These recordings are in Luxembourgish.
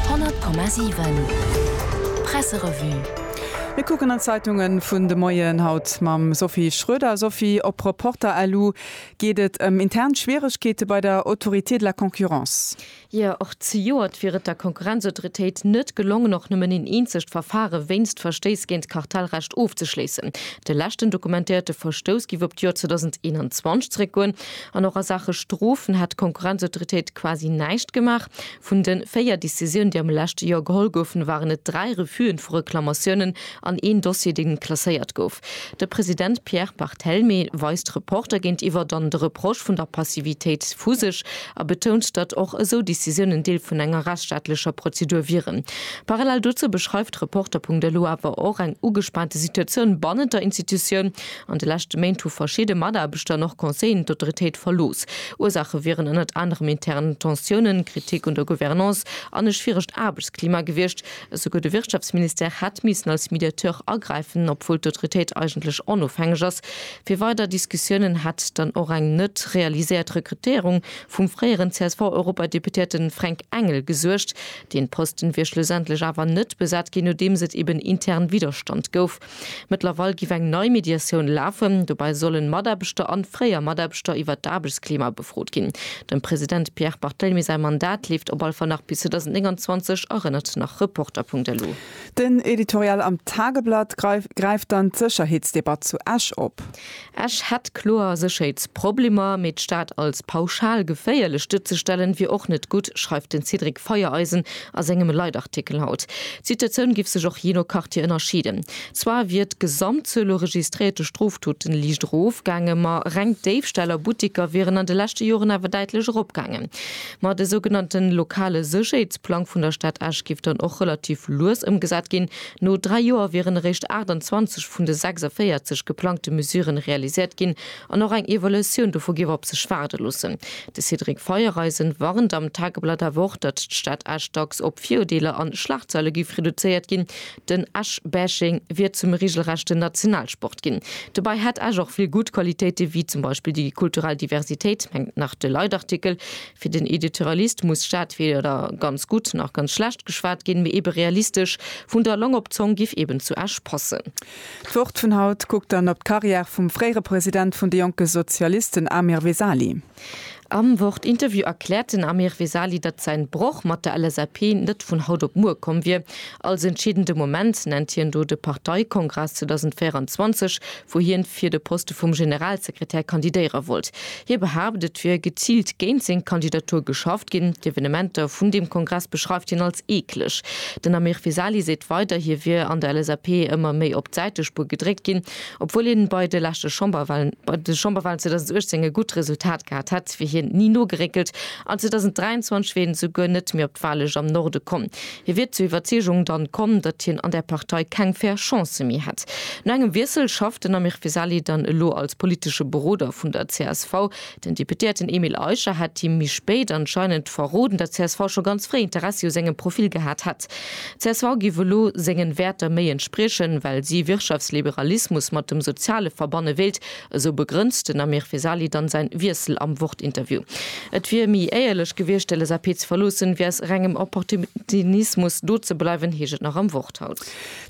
100,7 Presserevue. Mir kucken an d'Zeitungen vun de Moien, haut mam Sophie Schroeder. Sophie, op Reporter LU geet et ëm intern Schwieregkeete bei der Autorité de la Concurrence. Jo, och zejoert wier et der Konkurrenzautoritéit net gelongen, och nëmmen een eenzegt Verfare wéinst Verstéiss géint d'Kartellrecht ofzeschléissen. De leschten dokumentéierte Verstouss géif op d'Joer 2021 zeréckgoen. An och a Saache Strofen hat d'Konkurrenzautoritéit quasi näischt gemaach. Vun de véier Decisiounen, déi am leschte Joer geholl goufen, waren et dräi Refusen vu Reklamatiounen an een Dossier, dee klasséiert gouf. De President Pierre Barthelmé weist d'Reporter géintiwwer dann de Reproche vun der Passivitéit vu sech a betount, datt och esou Decisiounen Deel vun enger rechtsstaatlecher Prozedur wieren. Parallel dozou beschreift d'Reporter-Punkt elo awer och eng ugespaante Situatioun bannent der Institutioun. An de leschte Méint hu verschidde Mataarbechter an och Conseillen d'Autoritéit verlooss. Ursaache wieren ënnert anerem intern Tensiounen, Kritik un der Gouvernance an e schwieregt Aarbechtsklima gewiescht. Esouguer de Wirtschaftsministère hätt missen als Mediateur agräifen, obwuel d'Autoritéit eigentlech onofhängeg ass. Fir weider Diskussiounen hätt dann och eng net realiséiert Rekrutéierung vum fréieren CSV-Europadeputéierte Fränk Engel gesuergt. Deen Posten wier schlussendlech awer net besat ginn, nodeems et eben intern Widderstand gouf. Mëttlerweil giff eng nei Mediatioun lafen. Dobäi sollen Mataarbechter an fréier Mataarbechter iwwert d'Aarbechtsklima befrot ginn. Dem President Pierre Barthelemy säi Mandat leeft op alle Fall nach bis 2029, erënnert nach Reporter.lu. Den Editorial am Tageblatt gräift dann d'Sécherheetsdebatt zu Esch op. Esch hätt kloer Sécherheetsproblemer, mee d'Stad als pauschal geféierlech duerzestellen, wier och net gutt, schreift den Cédric Feiereisen a sengem Leitartikel haut. D'Situatioun giff sech och jee no Quartier ënnerscheeden. Zwar wier d'Gesamtzuel u registréierte Strofdote liicht erofgaange, ma reng Déifställ a Butteker wieren an de leschte Joren awer däitlech eropgaange. Ma de sougenannte lokale Sécherheetsplang vun der Stad Esch giff dann och relativ lues ëmgesat ginn, No dräi Joer wieren eréischt 28 vun de 46 geplangte Mesuren realiséiert ginn an och eng Evaluatioun dovu géif op sech waarde loossen. De Cédric Feiereisen warnt am Tageblatt awer och, datt d'Stad Esch dacks op Virurdeeler an Schlagzeile géif reduzéiert ginn. Den Esch-Bashing wier zum reegelrechten Nationalsport ginn. Dobäi hätt Esch och vill gutt Qualitéiten, wéi zum Beispill déi kulturell Diversitéit, mengt nach de Leitartikel. Fir den Editorialist muss Stad weder ganz gutt nach ganz schlecht geschwat ginn, mee ebe realistesch. Vun der Long op d'Zong giff eben zu Esch passen. D'Wort vun haut kuckt dann op d'Karriär vum fréiere President vun de jonke Sozialisten Amir Vesali. Am Wort Interview erkläert den Amir Vesali, datt säin Broch mat der LSAP net vun haut op muer komm wier. Als entscheedende Moment nennt hien do de Parteikongress 2024, wou hien fir de Poste vum Generalsekretär kandidéiere wollt. Hie behaapt, et wier geziilt géint seng Kandidatur geschafft ginn. D'Evenementer vun deem Kongress beschreift hien als eekleg. Den Amir Vesali seet weider, hie wier an der LSAP ëmmer méi op d'Säitespuer gedréckt ginn, obwuel hien bei de leschte Chamberwalen, bei de Chamberwalen 2018, e gutt Resultat gehat hätt, wier hien ni nogeréckelt an 2023 wier hien esouguer net méi op d'Wahllëscht am Norde komm. Hie wier zur Iwwerzeegung dann komm, datt hien an där Partei keng fair Chancë méi hätt. No engem Wiessel schafft den Amir Vesali dann elo als politesche Beroder vun der csv. Den Deputéierten Emile Eicher hätt him méi spéit anscheinend verroden, datt csv scho ganz fréi Interessi u sengem Profil gehat hätt. Csv géif elo sengen Wäerter méi entspriechen, well si Wirtschaftsliberalismus mat dem Soziale verbanne wéilt, Esou begrënnt den Amir Vesali dann säin Wiessel am Wort-Interview. Et wier méi éierlech gewiescht de LSAP ze verloossen, wéi aus rengem Opportuninismus do ze bleiwen, heescht et nach am Worthaus.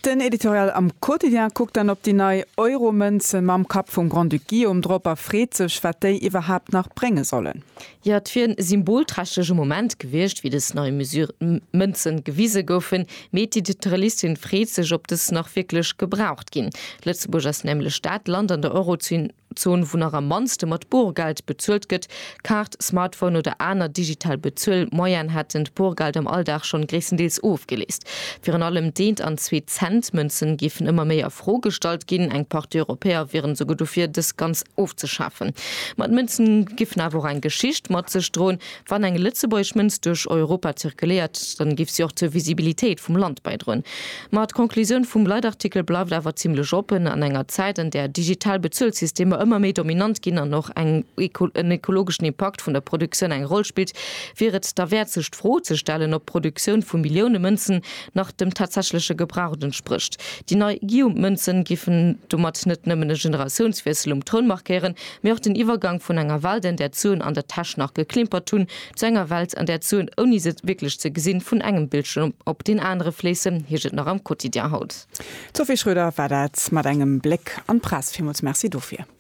Den Editorial am Quotidien kuckt dann op déi nei Euro-Mënze mam Kapp vum Grand-Duc Guillaume drop a freet sech, wat déi iwwerhaapt nach brénge sollen. Jo, et wier e symbolträchtlege Moment gewiescht, wéi dës nei Mesure d'Mënzen gewise goufen, mee d'Editorialistin freet sech, ob dës nach wierklech gebraucht ginn. Lëtzebuerg ass nämlech dat Land an der Eurozon, wou nach am mannste mat Borgeld bezuelt gëtt. Kaart, Smartphone oder aner digital Bezuel-Moyenen hätten d'Borgeld am Alldag schonn gréisstendeels ofgeleest. Virun allem d'eent an d'zweet. D'Cent-Mënzen géifen ëmmer méi a Fro gestallt ginn. Eng Partie Europäer wieren esouguer dofir, dës ganz ofzeschafen. Ma d'Mënzen géifen awer och eng Geschicht mat sech droen. Wann eng lëtzebuergesch Mënz duerch Europa zirkuléiert, dann géif si och zur Visibilitéit vum Land bäidroen. Ma d'Conclusioun vum Leitartikel bleift awer zimlech oppen. An enger Zäit, an där digital Bezuelsystemer ëmmer méi dominant ginn an och en ekologeschen Impakt vun der Produktioun eng Roll spillt, wier et derwäert sech d'Fro ze stellen, ob d'Produktioun vu Millioune Mënzen nach dem tatsächleche Gebrauch entsprécht. Déi nei Guillaume-Mënzen géifen domat net nëmmen e Generatiounswiessel um Troun markéieren, mee och den Iwwergank vun enger Welt, an där d'Suen an der Täsch nach geklimpert hunn, zu enger Welt, an där d'Suen, ouni se wierklech ze gesinn, vun engem Bildschierm op deen anere fléissen, heescht et nach am Quotidien haut. D'Sophie Schröder war dat mat engem Bléck an d'Press. Villmools Merci dofir.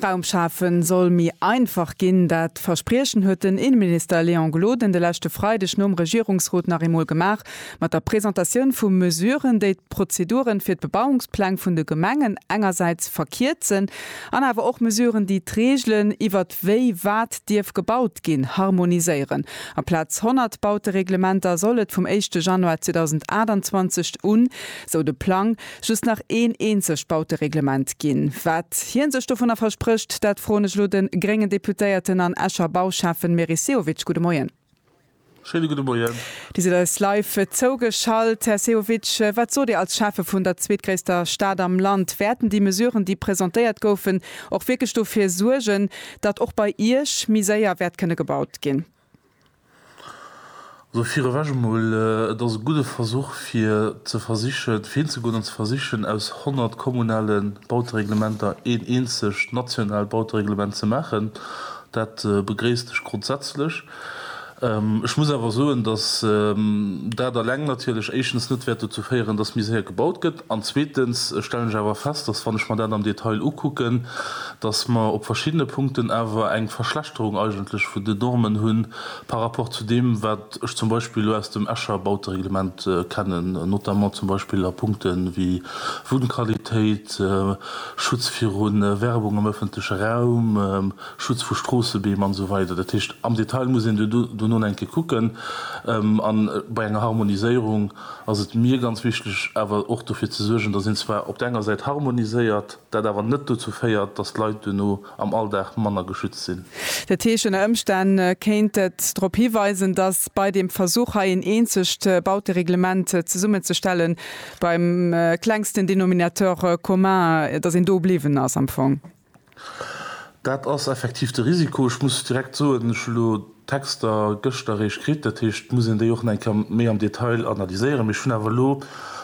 Wunnraum schafen soll méi einfach ginn. Dat Verspriechen huet den Inneminister Léon Gloden de leschte Freideg nom Regierungsrot nach eemol gemaach, mat der Presentatioun vu Mesuren, déi d'Prozeduren fir d'Bebauungspläng vun de Gemengen engersäits verkierzen an awer och Mesuren, déi d'Reegelen iwwert wéi wat dierf gebaut ginn, harmoniséieren. Amplaz 100 Bautereglementer soll et vum éischte Januar 2028 un, esou de Plang, just nach een eenzegt Bautereglement ginn. Wat hie sech dovunner versprécht, dat froen ech elo de gréngen Deputéierten an Escher Bauschäffen Meris Sehovic. Gudde Moien. Schéine gudde Moien. Dir sidd eis live zougeschalt. Här Sehovic, wat sot Dir als Schäffe vun der zweetgréisster Stad am Land? Wäerten déi Mesuren, déi presentéiert goufen, och wierklech dofir suergen, datt och bei Iech méi séier wäert kënne gebaut ginn? Also virewech emol, et ass e gudde Versuch, fir ze versichen, fir hinzegoen an ze versichen, aus honnert kommunale Bautereglementer een eenzegt nationaalt Bautereglement ze maachen. Dat begréisst ech grondsätzlech. Ech muss awer soen, dass dat eleng natierlech éischtens net wäert dozou féieren, dass méi séier gebaut gëtt, an zweetens stellen ech awer fest, dass, wann ech mer dat am Detail ukucken, dass mer op verschiddene Punkten awer eng Verschlechterung eigentlech vun den Normen hu par rapport zu deem, wat ech zum Beispill elo aus dem Escher Bautereglement kennen, notamment zum Beispill a Punkte wéi Wunnqualitéit, Schutz viru Werbung am öffentleche Raum, Schutz vu Stroossebeem an esou weider. Dat heescht, am Detail muss een dono eng Kéier kucken. A bei enger Harmoniséierung ass et mir ganz wichtig awer och dofir ze suergen, dass een zwar op der enger Säit harmoniséiert, dat awer net dozou féiert, datt d'Leit duerno am Alldag manner geschützt sinn. Dat heescht, ënner Ëmstänn kéint et drop hiweisen, datt bei deem Versuch hei een eenzegt Bautereglement zesummenzestellen, beim klengsten Denominateur commun, datt een do bliwwen ass am Fong. Dat ass effektiv de Risiko. Ech muss direkt soen, ech hu lo. Texter gëschter eréischt kritt, dat heescht, et muss een déi och nach eng Kéier méi am Detail analyséieren. Mee ech hunn awer elo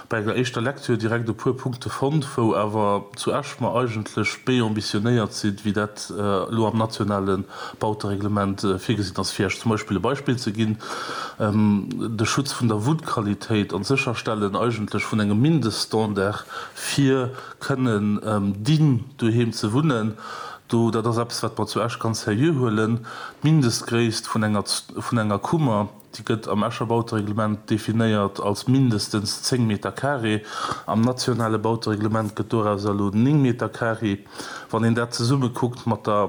bei enger éischter Lecture direkt e puer Punkte fonnt, wou awer zu Esch mer eigentlech méi ambitionéiert sinn, wéi dat elo am nationale Bautereglement virgesinn ass. Fir Esch zum Beispill e Beispill ze ginn, de Schutz vun der Wunnqualitéit an d'Sécherstellen eigentlech vun engem Mindeststandard, fir kënnen dign doheem ze wunnen, Do, dat ass eppes, wat mer zu Esch ganz seriö huelen. D'Mindestgréisst vun enger, vun enger Kummer, déi gëtt am Escher Bautereglement definéiert als mindestens 10 Meter carré. Am nationale Bautereglement gëtt doraus elo 9 Meter carré. Wann een dat zesummekuckt mat der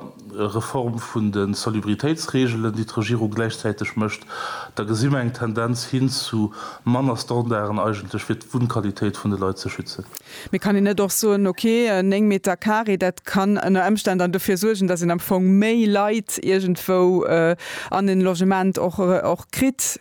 Reform vun de Salubritéitsreegelen, déi d'Regierung gläichzäiteg mécht, da gesi mer eng Tendenz hin zu manner Standarden eigentlech, fir d'Wunnqualitéit vun de Leit ze schützen. Mee kann een net och soen, ok, 9 Meter carré, dat kann ënner Ëmstänn dann dofir suergen, dass een am Fong méi Leit iergendwou an en Logement och kritt?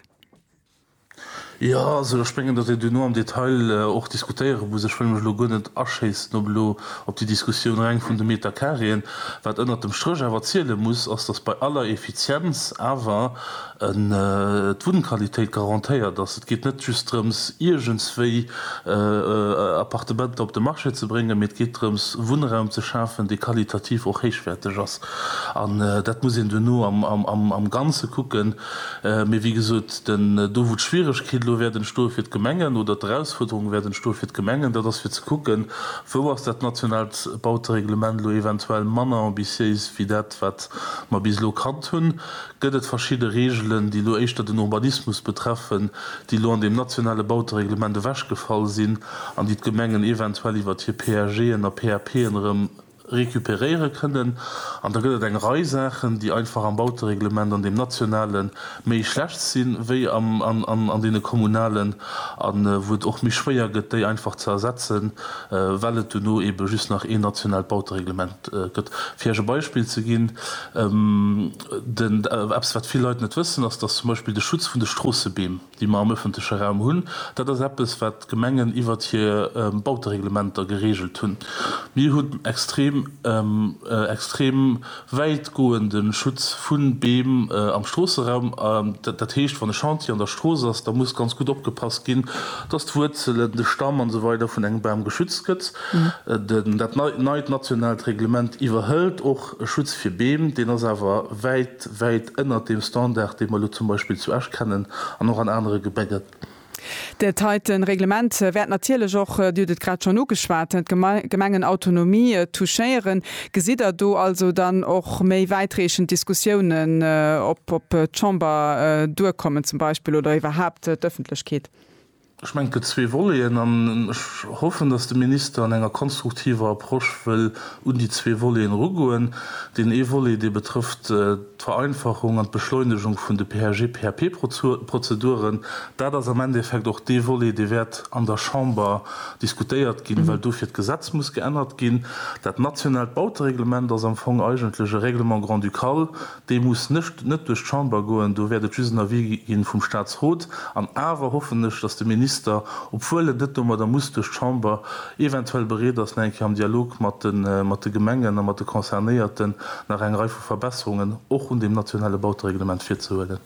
Jo, also ech mengen, datt een duerno am Detail och diskutéiere muss. Ech wëll mech elo guer net aschéissen op elo op déi Diskussioun reng vun de Metercarréen. Wat ënnert dem Stréch awer ziele muss, ass, datt bei aller Effizienz awer, D'Wunnqualitéit garantéiert ass. Et geet net just drëms, iergendswéi Appartementer op de Marché ze bréngen, mee et geet drëms, Wunnraum ze schafen, dee qualitativ och héichwäerteg ass. An dat muss een duerno am Ganze kucken. Mee wéi gesot, do wou d'Schwieregkeet elo wäert entstoe fir d'Gemengen oder d'Erausfuerderung wäert entstoe fir d'Gemengen, dat ass fir ze kucken, wou ass dat nationaalt Bautereglement elo eventuell manner ambitiéis wéi dat, wat mer bis elo kannt hunn. Gëtt et verschidde Reegelen, déi elo éischter den Urbanismus betreffen, déi elo an deem nationale Bautereglement ewechgefall sinn an déi d'Gemengen eventuell iwwert hir PAGen a PAPen erëm recuperéiere kënnen? An da gëtt et eng Rei Saachen, déi einfach am Bautereglement, an deem nationale méi schlecht sinn, wéi an deene kommunalen, a wou et och méi schwéier gëtt, déi einfach ze ersetzen, well et duerno ebe just nach een nationaalt Bautereglement gëtt. Fir Iech e Beispill ze ginn. Den, eppes wat vill Leit net wëssen ass, dass zum Beispill de Schutz vun de Stroossebeem, déi mer am ëffentleche Raum hunn, dat ass eppes wat d'Gemengen iwwert hir Bautereglementer geregelt hunn. Mir hunn extrem, extrem wäitgoende Schutz vu Beem am Stroosseraum. Dat heescht, wann e Chantier an der Strooss ass, da muss ganz gutt opgepasst ginn, dass d'Wuerzelen, de Stamm an esou weider vun engem Bam geschützt gëtt. Dat neit nationaalt Reglement iwwerhëlt och E Schutz fir Beem, deen ass awer wäit, wäit ënnert deem Standard, dee mer elo zum Beispill zu Esch kennen an och an anere Gebäcker. Dat heite Reglement wäert natierlech och, Dir hutt et grad schonn ugeschwat, d'Gemengenautonomie touchéieren. Gesitt Der do also dann och méi wäitreechend Diskussiounen, ob d'Chamber duerkommen zum Beispill oder iwwerhaapt d'Ëffentlechkeet? Ech mengen, et gëtt zwee Voleten an ech hoffen, dass de Minister an enger konstruktiver Approche wëll un déi zwee Voleten erugoen. Deen ee Volet, dee betrëfft d'Vereinfachung an d'Beschleunegung vun de PHG-PHP-Prozeduren. Dat ass am Endeffekt och dee Volet, dee wäert an der Chamber diskutéiert ginn, well dofir d'Gesetz muss geännert ginn. Dat nationaalt Bautereglement ass am Fong eigentlech e Règlement grand-ducal, Dee muss nët nët duerch d'Chamber goen, do wäert et just en Avis gi vum Statsrot. An awer hoffen ech, datt de Minister, obwuel et nët domadder muss duerch d'Chamber, eventuell bereet ass, nach eng Kéier am Dialog mat de mat de Gemengen a mat de Concernéierten nach eng Rei vu Verbesserungen och un deem nationale Bautereglement virzehuelen.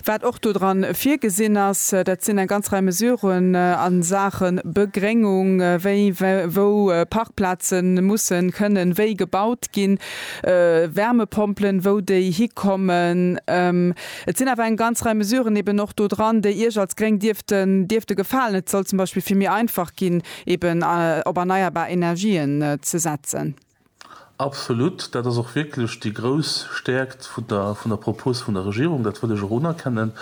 Wat och do dran virgesinn ass, dat sinn eng ganz Rei Mesuren a Saache Begréngung, wéi wou Parkplaze mussen, kënnen, wéi gebaut ginn, Wärmepompelen, wou déi hikommen. Et sinn awer eng ganz Rei Mesuren eben och do dran, déi Iech als Gréng dierften, dierfte gefalen. Et soll zum Beispill vill méi einfach ginn, eben op erneierbar Energien ze setzen. Absolut, dat ass och wierklech déi grouss Stärkt Vun der Propos vun der Regierung, dat wëll ech och unerkennen,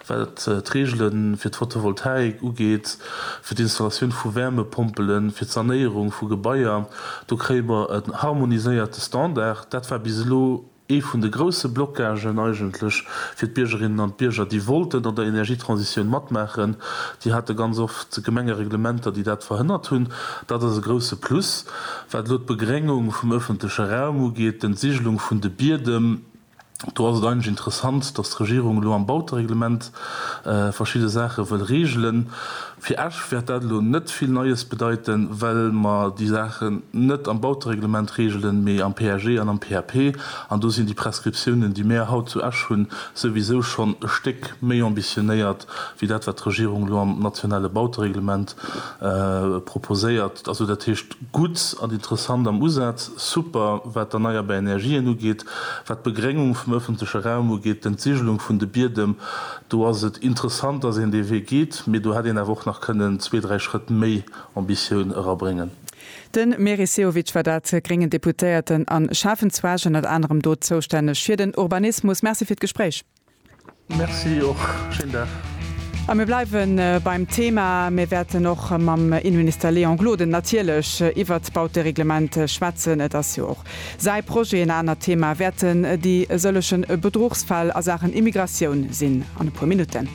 wat d'Reegele fir d'Photovoltaik ugeet, fir d'Installatioun vu Wärmepompelen, fir d'Sanéierung vu Gebaier, do kréie mer e harmoniséierte Standard. Dat war bis elo ee vun de grouse Blocagen eigentlech fir d'Biergerinnen an d'Bierger, déi wollten an der Energietransitioun matmaachen. Déi hate ganz oft Gemengereglementer, déi dat verhënnert hunn. Dat ass e grouse Plus. Wat elo d'Begréngung vum ëffentleche Raum ugeet, d'Entsigelung vun de Biedem, do ass et eigentlech interessant, datt d'Regierung elo am Bautereglement verschidde Saache wëll regelen. Fir Esch wäert dat elo net vill Neies bedeiten, well mer déi Saachen net am Bautereglement regelen, mee am PAG an am PAP. An do sinn déi Prescriptiounen, déi mäer haut zu Esch hunn, souwisou schonn e Stéck méi ambitionéiert wéi dat, wat d'Regierung elo am nationale Bautereglement proposéiert. Also dat heescht, gutt an interessant am Usaz, super, wat d'erneierbar Energien ugeet, wat d'Begréngung vum ëffentleche Raum ugeet, d'Entsigelung vun de Biedem, do ass et interessant, dass een dee Wee geet, mee do hätt een awer och nach kënnen zwee, dräi Schrëtt méi Ambitioun erabréngen. De Meris Sehovic war dat, gréngen Deputéierten a Schäffenzwerg, ënnert anerem do zoustänneg fir den Urbanismus. Merci fir d'Gespréich. Merci och. Schéin Dag. A mir bleiwe beim Thema. Mir wäerten och mam Inneminister Léon Gloden natierlech iwwert d'Bautereglement schwätzen. Et ass jo och säi Projet. En anert Thema wäerten déi sëlleche Bedruchsfäll a Saachen Immigratioun sinn an e puer Minutten.